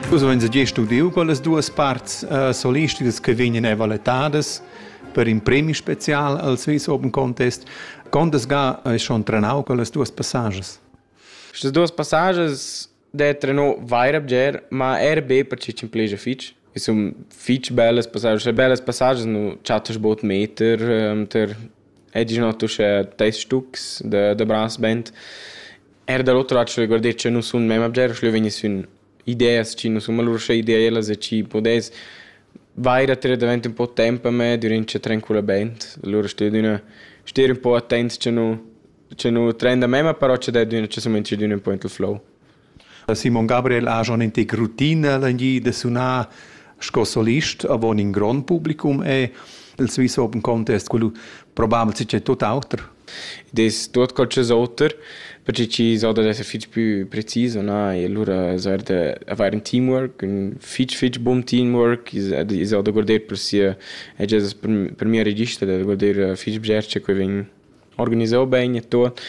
Vus veins gest udiu quellas duas parts uh, solistidas che vegnan evaletadas per in premi special al Swiss Open Contest. Condes ga hai schon trenau quellas duas passages? Queste duas passages de treno vaira bger, ma er be per ci cin pleja fitch. E sun fitch bellas passages, cioè bellas passages nu chattas bot meter, um, ter è diciamo tu c'è tais stux de, de brass band. Eir da l'oter lac regordet cha nus sun memma bger schluevegni sün ideas chi nu sun malura ideelas e chi pudess vaira tirer davent ün po temp a me dürant cha tranquillamaing. Alura stedüna ster ün po attent cha nu cha nu trenda memma, però cha dadüna cha sumainza stedüna ün po int il flow. Simon Gabriel ha schon intig routine legni da sunar sco solist avon in grond publicum e il Swiss Open Contest, quello probabel si c'è tutt'auter. Id es tuot qualchosa oter perche chi's auda d'esser fich pü precis o na e lura as vard avair ün teamwork, ün fich fich bun teamwork, i's auda guarder per sia agienda, per mia register da guarder fich bger che que vegn organisà bain e tuot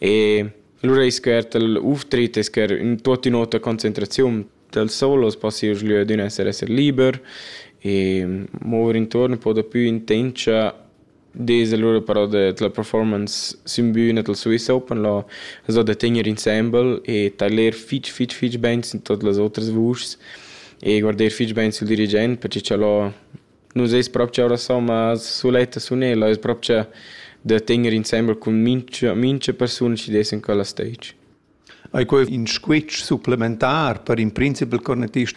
e lura ais que eir tel auftritt, ais que eir ün tuot ün'otra concentraziun. Dal sol as possa ir sü adüna esser esser liber e mover intuorn ün po dapü intendscha Dis alura però da la performance sün büna dal Swiss Open là as dà da tegner insembel e tailer fich fich fich bain sin tuot las otras vuschs e guarder fich bain sül dirigent perche cha là nu s'es propcha orasò ma suletta sun el, es propcha da tegner insembel cun mincha mincha persun chi dess in quella stage. Ei quei in squitsch supplementar per in principal cornetist?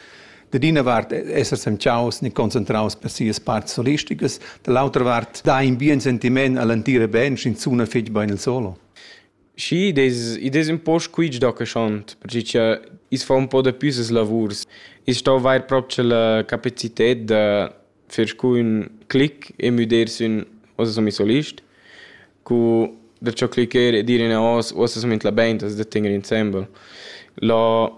Dad ina vart esser semciaus ni concentraus per sias parts solisticas, dall'autra vart dai in bien sentiment all'entira band sch'in suna fetg bein il solo. Schi, des, i des un po squitsch da che schont, perché che is fa un po da püsas lavurs. Is stau vair proprio la capacited da fer scu ün clic e müder sün uossa sun i solist. Cu da ciò clicher e dir inavos uossa sun la bain da tegner insembel. Là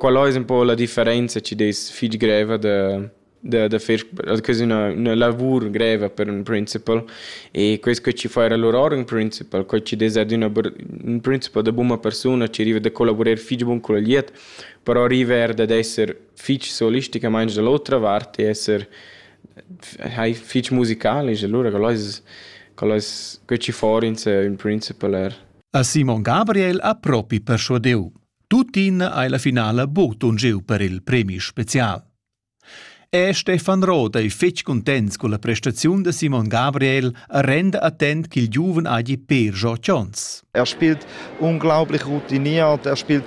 quella ais ün po la differenza chi'd es fich greva da da da fer que es üna üna lavur greva per ün principal e quest co chi fa eir lur ün principal, co chi'd es ad üna ün principal da buna persuna chi riva da collavurer fich bun cul agliet, però riva eir dad esser fich solisticamaing da l'otra vart e esser hai fich musicalisch, allura quel ais quel ais que chi for in se ün principal er. A Simon Gabriel ha propi perschuadeu. Tuttina hai la finala bod un giu per il premi special. E Stefan Roth ei fetg cuntents con la prestaziun de Simon Gabriel a renda attent ch'il giuven hagi per Joe Jones. Er spielt unglaublich routiniert, er spielt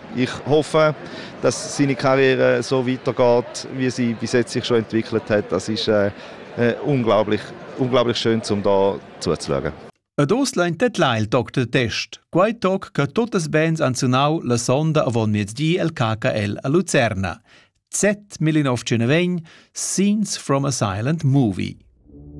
Ich hoffe, dass seine Karriere so weitergeht, wie sie bis jetzt sich schon entwickelt hat. Das ist äh, äh unglaublich, unglaublich schön, um da zuzuschauen. Ad ost lein tetlail toc de test, quai toc che totas bands han sunau la sonda avon miezdi el KKL a Lucerna. Z19 Scenes from a Silent Movie.